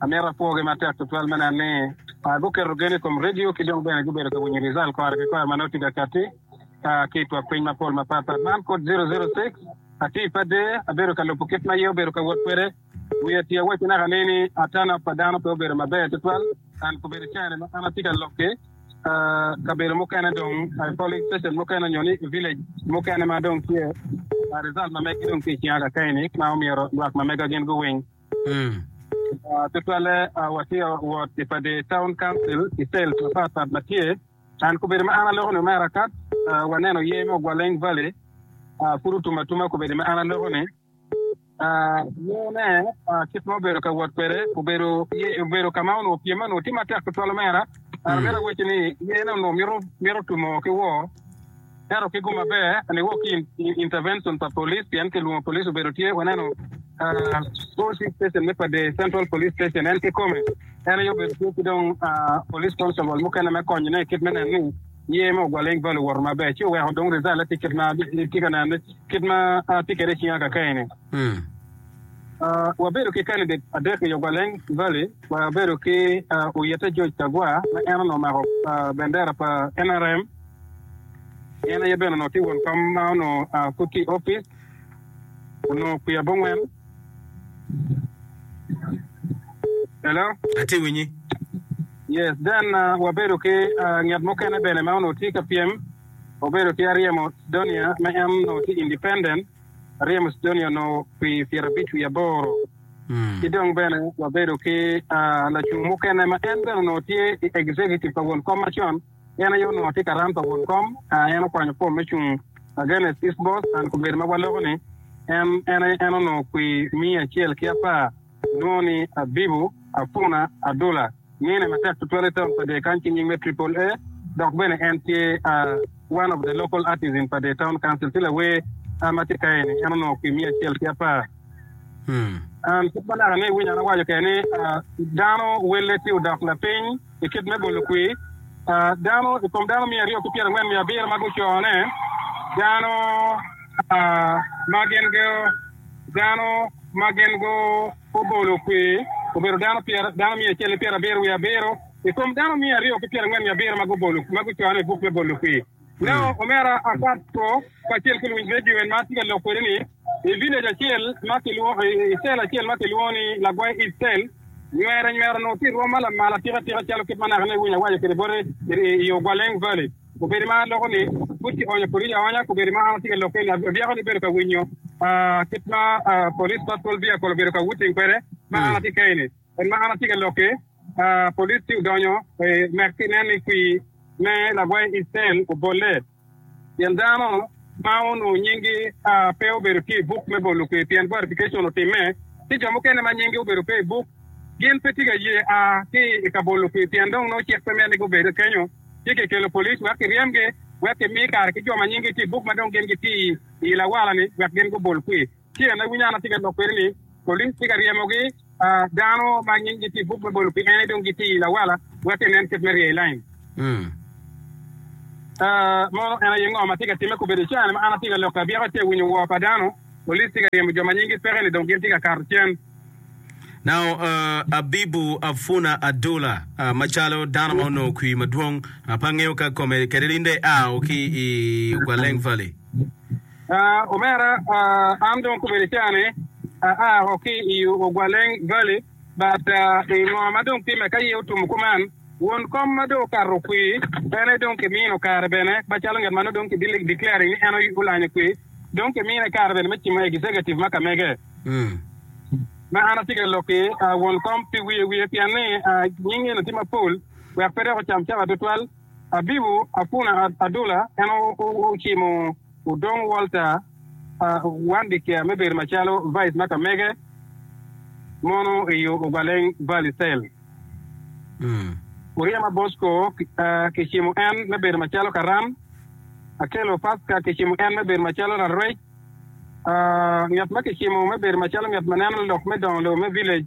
Amito apwogi matek tutwal me neno ni guketo gen i kom redio ki dong bene gubedo ka winyo rijal kore ki kore ma nongo tye ka katti ki i twagpiny mapol mapat pat. Man kod zero zero six, Atye i Pader, abedo ka lubo kit ma aye obedo ka wot kwede. Wiya tye awaco naka ni ni ata nok pa dano pe obedo maber tutwal, and kobedo i caine ma an atye ka lok ki kabedo mukene dong i polling station mukene nyo ni i village mukene ma dong tye rijal ma meggi dong tye i cinga kakei ni ma omyero lwak ma mega gin guwiny. Tutwalle, watye wot i Pade Town Council i cell mapat pat ma tye. An kobedi ma an aloko-ni me arakat, waneno ye me Ogwaleng Valley, pud otum atuma kobedi ma an aloko-ni. Yene, kit ma obedo ka wot kwede, obedo ye obedo ka ma onongo pyem-me onongo tye matek tutwal omera. Myero awacci ni yene onongo mito tumo ki woo. Ento kit mo maber ni wok ki intervention pa police pien kilwongo police obedo tye waneno OC station me Padee Central Police Station en kikome en aye obedo tye ki dong police constable mukene me konyone kit me neno ni ye me Ogwaleng Valley owoto maber ci oweko dong result tye kit ma tye ka neno kit ma tye kede icinga kakeni. Wabedo ki candidate adek i Ogwaleng Valley wabedo ki Oyete George Kagwa ma en onongo omako bendera pa NRM, En aye bene onongo tye won kom ma onongo pud tye i opic, onongo kwi abongwen. Hello? Atye ka winyi. Yes, then wabedo ki ngat mukene bene ma onongo tye ka pyem, obedo ki aryemo Sidonia ma en onongo tye independent, aryemo Sidonia onongo kwi pyerabic wiye aboro. Ki dong bene wabedo ki lacung mukene ma en bene onongo tye i executive pa won kom macon, En aye onongo tye karam pa won kom. En okwanyo fom me cung against East Bos and kubedo ma waloko ni en en aye en onongo kwi miya acel ki apar nwo ni Abibu Afuna Adula mine matek tutwal i town pa Dee kany ki nying me Triple A dok bene en tye one of the local artist in pa Dee town council ci lawer a matye kaye ni en onongo kwi miya acel ki apar and kit ma naka ni iwinyo an awaco kede ni dano welle tye odok lapiny. i kit me bolo kwir dano i kom dano miya aryo ki pyera angwen miya abiro ma gucone dano ma gin go dano ma gin go obolo kwir obedo dano pyera dano miya acel ki pyera abiro wiye abiro i kom dano miya aryo ki pyera angwen miya abiro ma gubolo ma gucone i buk me bolo kwir Nongo omera akat two kacel ki luwinj redio en ma atye ka lok kwede ni i village acel ma kilwongo i cell acel ma kilwongo ni Lagwai East Cell, nywera nywera onongo tye i rwom ma lamal atika tika calo kit ma nakine iwinyo awaco kwede bote i Ogwaleng Valley. Kobedi ma aloko ni pud kionyo police aonya, kobedi ma an atye ka lok kwede ni adyako ni bedo ka winyo kit ma police patrol vehicle obedo ka wutting kwede ma an atye kene-ni. En ma an atye ka lokke, polis ci odonyo i nek pi nen ni kwir me lagwai Icel obolle, pien dano ma onongo nyinggi pe obedo tye i buk me bolo kwir pien verification otimme, ci jo mukene ma nyinggi obedo pe i buk gin pe tye ka ye a ki i ka bolo kwir pien dong nongo cik pe mito ni gubed kenyo, ci kikelo polis wek kiryemgi wek kimi kare ki jo ma nyinggi tye i buk ma dong gin gitye i lawala-ni wek gin gubol kwir. Ci en awinyo an atye ka lok kwede ni, Polis tye ka ryemogi dano ma nyinggi tye i buk me bolo pien ni dong gitye i lawala, wek enen kit me rye i lain. Mono en aye ngo ma tye ka timme? Kobedo i caane ma an atye ka lok ki abyeka ci awinyo woo pa dano, polis tye ka ryemo jo ma nyinggi peke-ni dong gin tye ka kato cen. Now, Abibu Afuna Adola, macalo dano ma onongo kwir madwong, pe angeyo ka kome kede linde ao ki i Okwaleng Valley. Omera, an dong kobedi cani aa woko ki i Ogwaleng Valley, but i ngo ma dong timme ka iye otum kuman? Won kom ma dong okato kwir ene dong kimino kare bene macalo ngat ma nongo dong ki declaring ni en olanyo kwir, dong kimine kare bene me cimo executive ma kamege. Ma an atye ka lok ki won kom pi wiye wiye pien ni nying eno tye mapol wek pe dok ocam cawa tutwal. Abibu apuna adula en ocimo odong Walter Wandikia me bedo macalo Vice ma ka mege mono iyo Obaleng Valley Cell. Oryema Bosco kicimo en me bedo macalo Karam. Akelo Pasca kicimo en me bedo macalo Rarwec. Ngat ma kicimo me bedo macalo ngat ma neno lok me dongo lobo me Village.